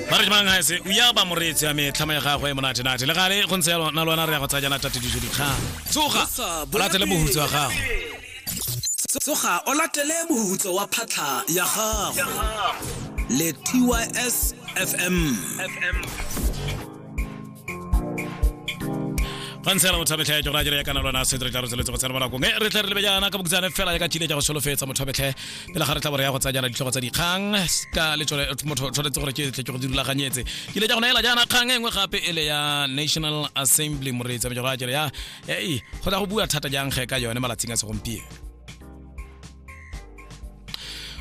ba re jmang ga se o ya ba moreetsi ya me tlhama ya gagwe e monate-nate le gale go ntse na lwana re ya go tsaya jana tatediso dikgang tsoga o latele bohutso wa gago tsoga o latele bohutso wa phatlha ya gago le tys fm ga ntse yana mothabetlhe ya jona jere ya kana lona setre tla re tsweletse go tsena mo nakong e re tle re lebe jaana ka bokutsane fela ya ka chile ja go solofetsa mothabetlhe pele ga re tla bore ya go tsaya jana ditlhogo tsa dikgang ka le tsone motho tshwanetse gore ke tle ke go dirulaganyetse ke le ja gona ela jaana kgang e nngwe gape e le ya national assembly moreetsa mejora jere ya ei go tla go bua thata jang ge ka yone malatsing a segompieno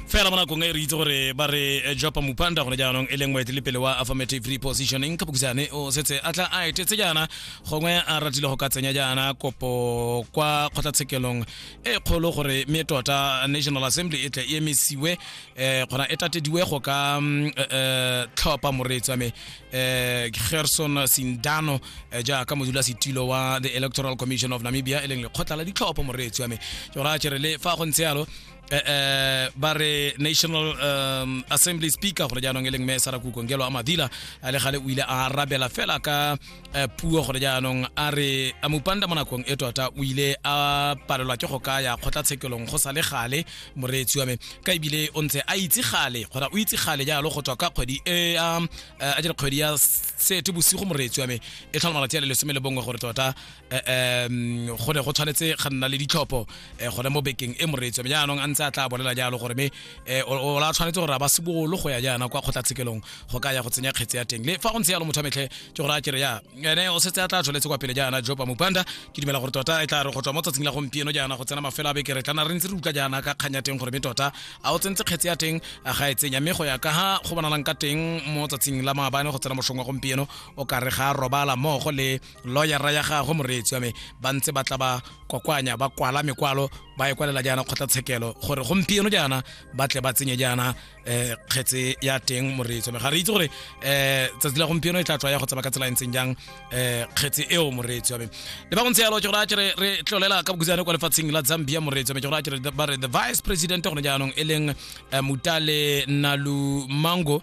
fela mo nakong e re itse gore ba re eh, jopa mupanda gone jaanong e leng moetelepele wa affirmative repositioning ka bokisane o setse a tla a etetse jaana gongwe a ratile go ka tsenya jaana kopo kwa kgotlatshekelong e kgolo gore mme tota national assembly e tle e emisiwe um kgona e tatediwe go ka mm, eh, eh, tlhopha moreetsi wa me eh, gerson sindano eh, jaaka modula setilo wa the electoral commission of namibia e leng lekgotla la ditlhopho moreetsi wa me ke gore a chere le fa go ntse yalo eh, eh, ba re national um, assembly speaker gore jaanong e leng me sara kukongelo a madila a le gale o ile a arabela fela ka eh, puo gore jaanong a re a mopanda mo nakong e tota o ile a palelwa ke go ka ya kgotlatshekelong go sa le gale moreetsi wa me ka ebile o ntse a itse gale kgona o itse gale jalo go tswa ka kgwedi e ya a jere kgwedi ya sete bosigo moreetsi wa me e tlhola malatsi a le lesome le bongwe gore tota um go ne go tshwanetse ga nna le ditlhopho eh, gone mo bekeng e moreetsi wa me jaanong a ntse a tla bolela jalo gore me eh, o o la tshwanetse gore a ba sebolo go ya jaana kwa kgotlatshekelong go ka ya go tsenya kgetse ya teng le fa go ntse yalo motho wa metlhe ke gore a kere ya ene o setse a tla tsholetse kwa pele jaana jopa mopanda ke dumela gore tota e tla re go tswa mo tsatsing la gompieno jaana go tsena mafelo a beke re tla re ntse re utlwa jaana ka kgang ya teng gore me tota a o tsentse kgetse ya teng a ga e tsenya mme go ya ka ga go bonalang ka teng mo tsatsing la maabane go tsena mošong wa gompieno o ka re ga robala mmogo le lawyera ya gagwe moreetsi wa me ba ntse ba tla ba kwakwanya ba kwala mekwalo ba e kwalela jaana kgotlatshekelo gore gompieno jaana ba tle ba tsenye jaana eh kgetse ya teng moreetso me ga re itse gore eh tsatsi la gompieno e tla tswa ya go tsaba ka tsela e ntseng jang eh kgetse eo moreetso ya me le ba go ntse yalo ke gore a kere re tlolela ka bokutsane kwa lefatsheng la Zambia moreetso me ke gore a kere ba re the vice president gone jaanong e leng eh, Mutale Nalu Mango